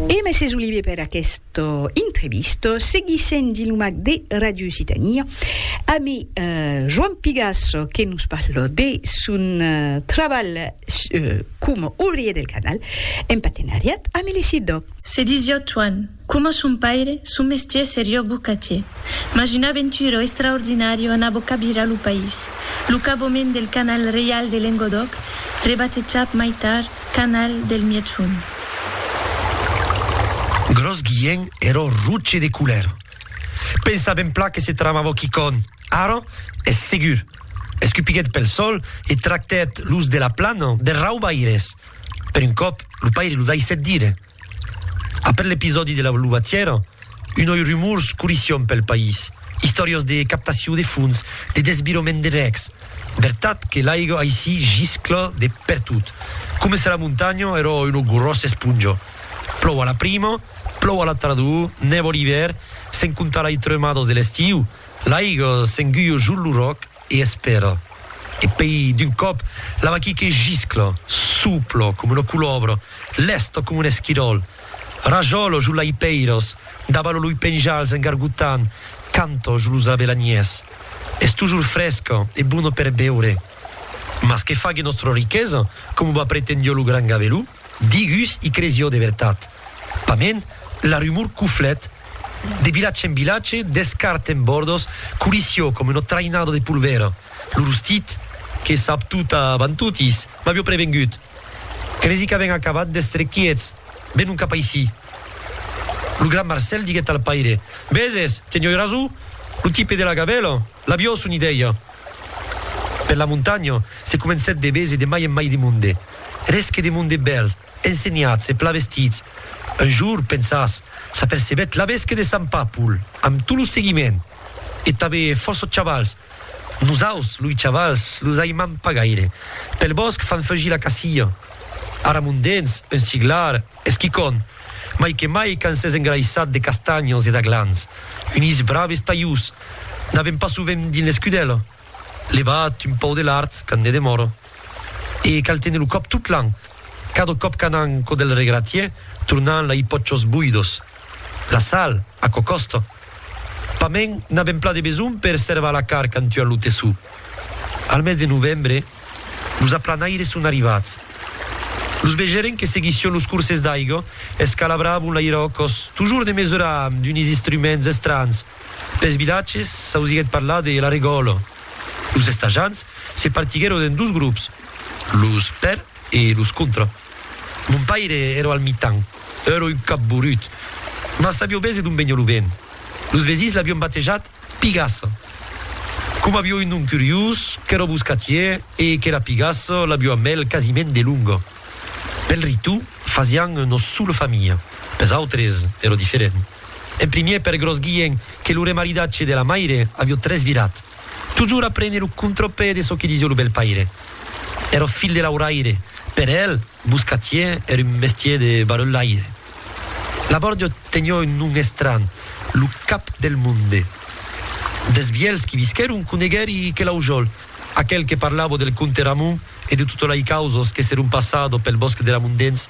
E mèses Olivier per aquesta entrevista. Seguissem dilumac de Radio Occitania ami Joan Pigasso que nos parla de son trabalh coma obrier del canal en patenariat ami l'ECIDOC. Se disiá Joan. Coma son paire, son mestier serió bocatier, mas una aventura extraordinària anava cabirar lo país, lo cabament del canal reial de Lengodòc, rebatejat mai tard canal del Mièchon. Gròs Guilhen èró roche de colèra. Pensa ben plan que se tramavó quicòn, ara es segur. Escupiguèt pel sol e tractèt los de la plana de raubaires. Per un còp, lo paire lo daissèt dire. Après l'episòdi de la luvatièra, unoi rumors corission pel país, istòrias de captacion de fons, de desvirament de rècs. Vertat que l'aiga aicí giscla de pertot, coma se la montanha èra una gròssa esponja. Plòu a la prima, plòu a la tardor, nèva l'ivèr, sens comptar lai tremadas de l'estiu, l'aiga s'enguia jos lo ròc, e espèra, e pei d'un còp la vaquí que giscla, supla coma una colòbra, lèsta coma un esquiròl, rajòla jo lai pèiras, daba lo loi penjals en gargotant, canta jo los avelanièrs. Es tojor fresca e bona per beure. Mas que fague nòstra riquesa, coma va pretendió lo gran gaveló? Digus i cresió de vertat. Pament, la rumor coflèt de vilatge en vilatge, d'escart en bòrdos, colissió coma una traïnada de polvèra. Lo rostit, que sap tot avant totis, m'avió prevengut. Cresi qu'avèn acabat d'èstre quiets, venon cap aicí. Lo gran Marcèl diguèt al paire, Veses, tenioi rasó, lo tipe de la gavèla, l'avió son idèia. Per la montanha, se comencèt de véser de mai en mai de monde. Res que de monde bèl. Ensenhatz e plavestitz. Un jour, pensatz, s'apercebèt l'abesque de Sant Papul, amb tot lo seguiment, e tanbe fòrça chavals, Nosaus, loi chavals, los aimam pas gaire. Pel bòsc fan feugir la cacia. Ara mon dens, un siglar, es quicòm, mai que mai quand s'es engraissat de castanhas e d'aglans. Unis braves talhús. N'avèm pas sovent dins l'escudèla. Levat un pau de l'art quand ne demòro. E cal tene lo còp tot l'an. Cada còp qu'anam cò del regratier tornan la i pòchos boidos. La sal, aquò còsta. Pas me'n n'avem pla de besonh per servar la car quand tuan lo tessó. Al mes de novembre, los aplanaires son arrivats. Los vegeren que seguission los corses d'aiga, escalabravon l'airòcos, tojor de mesurar amb d'unis istruments estranhs, Pels vilatges s'ausiguèt parlar de la regòla. Los estajants se partiguèron en dos grops, los per e los contra. Mon paire èra al mitan, èra un capborut, mas sabió bese d'on veniá lo vent. Los vesins l'avián batejat Pigassa, coma avió un nom curiós, qu'èra boscatier e que la pigassa l'avió amb el quasiment de longa. Pel ritu fasián nos sola familha, pels autres èra diferent. En primièr per Gròs Guilhèn que lo remaridatge de la maire avió tresvirat. Totjorn a prene lo contrapè de çò que disió lo bèl paire. Èra filh de lauraire, per el, boscatièr èra un mestièr de barrelaire. La bòrdia tenió un nom estranh, lo cap del monde. Dels vièlhs qui visquèron coneguèri que l'aujòl, aquel que parlava del comte Ramon e de tota lei causas que s'èron passada pel bòsc de Ramondens,